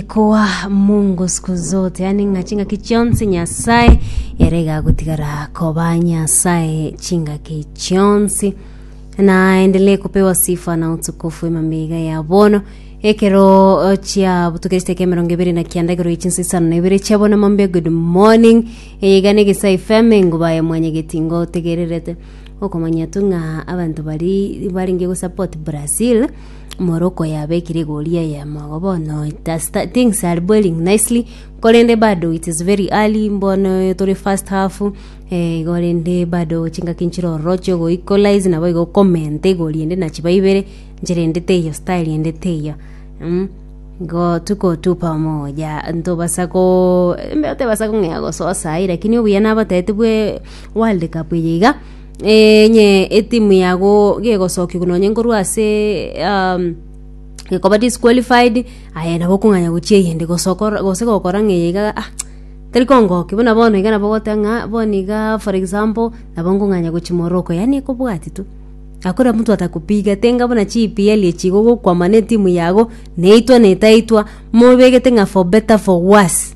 Ekoa Mungu siku zote, yaani ng'a chingaki chionsi Nyasaye ere igagotigara koba Nyasaye chingaki chionsi na endelee kupewa sifa na utukufu emamiga ya bono ekero chia butukeriste kia mirongo ibere na kianda igoro yechinsa isano na ibere chia bono mambia good morning eyegane gisa fm enguba ya mwanya getingo tegererete okomanya tu ng'a abanto bari baringe gusupport brazil morocco yabekire egori eye mogo bono it has sta- things are boiling nicely korende bado it is very early mbono tore first half eh, igo rende bado chingaki nchire ororo chia ogo equalize nabo igo okomenta egori ende na chiba ibere nchire ende teiyo style ende teiyo mm. Igo tikotupa omogoya ntobasa ko mbe otebasa kong'ea gosoa saii lakini obuya nabatebete bwe world cup eye iga. Onye etimu yago gegosokigwa nonye nkorwa ase gekoba disqualified aye nabo okong'anya gochia eyende gose okora gose gokora ng'a eyeiga ah teri kongokia buna bono iga nabo ogoteba ng'a bono iga for example nabo nkong'anya gochia morocco yaani ekobwatia tu hakuna mtu atakupiga tiga buna chi EPL echi iga ogokwama na etimu yago neitwa netaitwa mobegete ng'a for better for worse.